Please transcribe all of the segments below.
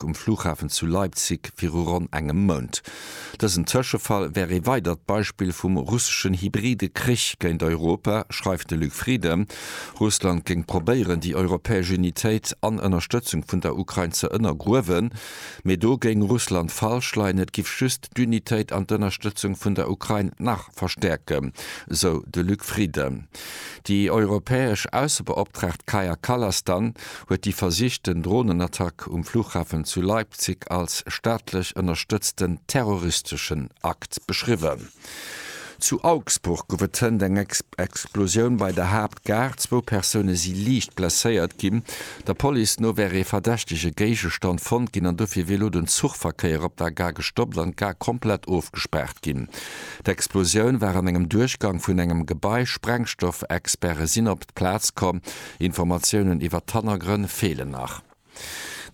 Attack um Flughafen zu Leipzig viru ronn engem Mount. Dësen Tëschefall wär ee weidert Beispill vum russeschen hybride Krich géint Europa, schreift de Luc Frieden. Russland géing probéieren, déi europäesch Unitéit an Ënnerstëtzung vun der Ukrain ze ënnergruewen. Mee do géing Russland falsch leien, et giff just d'Unitéit an d'Ënnerstëtzung vun der Ukrain nach verstäerken, sou de Luc Frieden. Déi europäesch Aussebeoptraagt Kaja Kallas dann. huet déi versichten Dronenattack um Flughafen zu Leipzig als staatlech ënnerstëtzten terroristeschen Akt beschriwwen. Zu Augsburg gouf et hënt eng Explosioun bei der Haaptgare, zwou Persoune si liicht blesséiert ginn. Der Police no wär ee verdächtege Géigestand fonnt ginn an dofir wier elo den Zuchverkéier op der Gare gestoppt an d'Gare komplett ofgespaart ginn. D'Explosioun war an engem Duerchgang vun engem Gebai, Sprengstoffexperte sinn op d'Plaz komm. Informatiounen iwwer d'Hannergrënn feelen nach.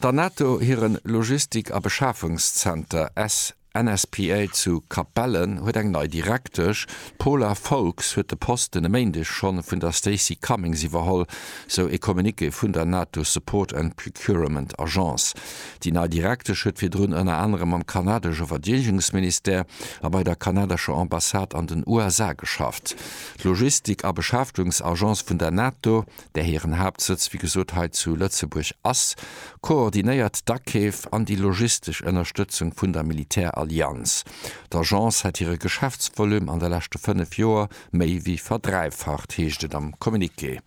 Der NATO hire Logistik a Beschafungszenter SNSPA zu Capellen huet eng nei Direktesch. D'Paula Foulkes huet de Posten e Méindeg schonn vun der Stacey Cummings iwwerholl, sou e Communiqué vun der NATO Support and Procurement Agence. Déi nei Direktesch huet virdrun ënner anerem am kanadesche Verdeedegungsministère a bei der kanadescher Ambassade an den USA geschafft. D'Logistik a Beschäftegungsagence vun der NATO, där hiren Haaptsëtz wéi gesot hei zu Lëtzebuerg ass, koordinéiert d'Akeef an déi logistesch Ënnerstëtzung vun der Militärallianz. D'Agence hätt hire Geschäftsvolume an de leschte fënnef Joer méi wéi verdräifacht, heescht et am Communiqué.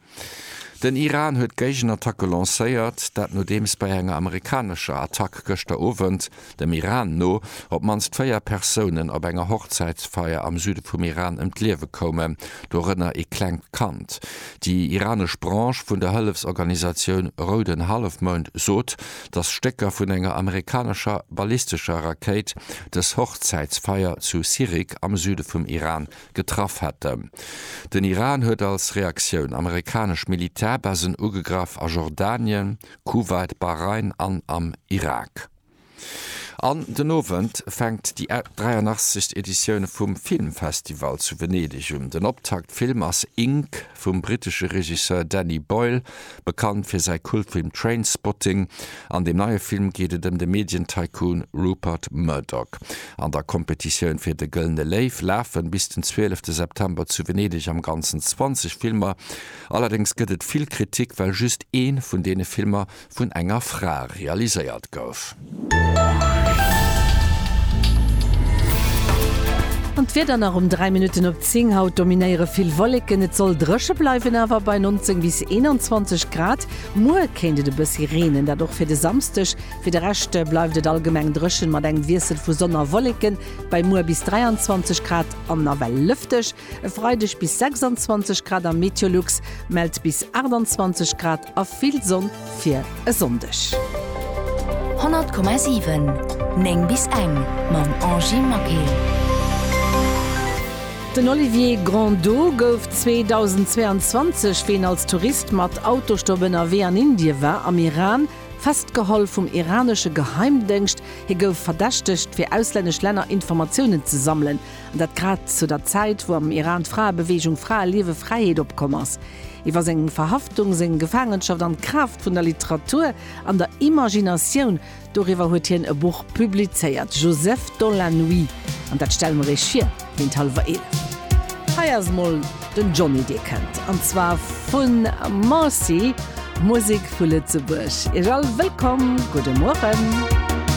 Den Iran huet d'Géigenattacke lancéiert, dat nodeems bei enger amerikanescher Attack gëschter Owend, dem Iran no, op d'mannst véier Persounen op enger Hochzäitsfeier am Süde vum Iran ëm d'Liewe koumen, dorënner ee klengt Kand. Déi iranesch Branche vun der Hëllefsorganisatioun Rouden Hallefmound sot, datt Stécker vun enger amerikanescher ballistescher Rakéit dës Hochzäitsfeier zu Sirik am Süde vum Iran getraff hätten. Den Iran huet als Reaktioun amerikanesch Militärbasen ugegraff a Jordanien, Kuwait, Bahrain an am Irak. An den Owend fänkt déi 83. Editioun vum Filmfestival zu Venedeg un. Den Optaktfilm ass Ink. vum brittesche Regisseur Danny Boyle, bekannt fir säi Kultfilm Trainspotting. An deem neie Film geet et ëm de Medien-Tycoon Rupert Murdoch. An der Kompetitioun fir de Gëllene Léiw lafen bis den 12 de September zu Venedeg am Ganzen 20 Filmer. Allerdéngs gëtt et vill Kritik, well just ee vun deene Filmer vun enger Fra realiséiert gouf. An d'Wieder nach um 3 Minutten op 10. Haut dominéiere vill Wolleken, et soll dréche bleiwen, awer bei 19 bis 21 Grad. Muer kéint et e bëssi reenen, dat och fir de Samsdeg. Fir de Rescht bleift et allgemeng dréchen, mat engem Wiessel vu Sonn a Wolleken bei muer bis 23 Grad an nawell lëfteg. E Freideg bis 26 Grad a Meteolux mellt bis 28 Grad. A vill Sonn fir e Sonndeg. 100,7 9 bis eng mam Angie Maquet. Den Olivier Grandeau gouf 2022, wéi en als Tourist mat Autostop ënnerwee an Indie war, am Iran festgeholl vum iranesche Geheimdéngscht. Hie gouf verdächtegt, fir auslännesch Länner Informatiounen ze sammelen, an dat grad zu der Zäit, wou am Iran d'Fraebeweegung Frae liewe, Fräiheet opkomm ass. Iwwer seng Verhaftung, seng Gefaangenschaft an d'Kraaft vun der Literatur an der Imaginatioun, doriwwer huet hien e Buch publizéiert, Joseph dans la nuit, an dat stelle mer Iech vir géint hallwer eelef. Hei ass emol den Johnny, dee kënnt, an zwar vu Marcy, Musek vu Lëtzebuerg. Iech all wëllkomm, gudde Mueren.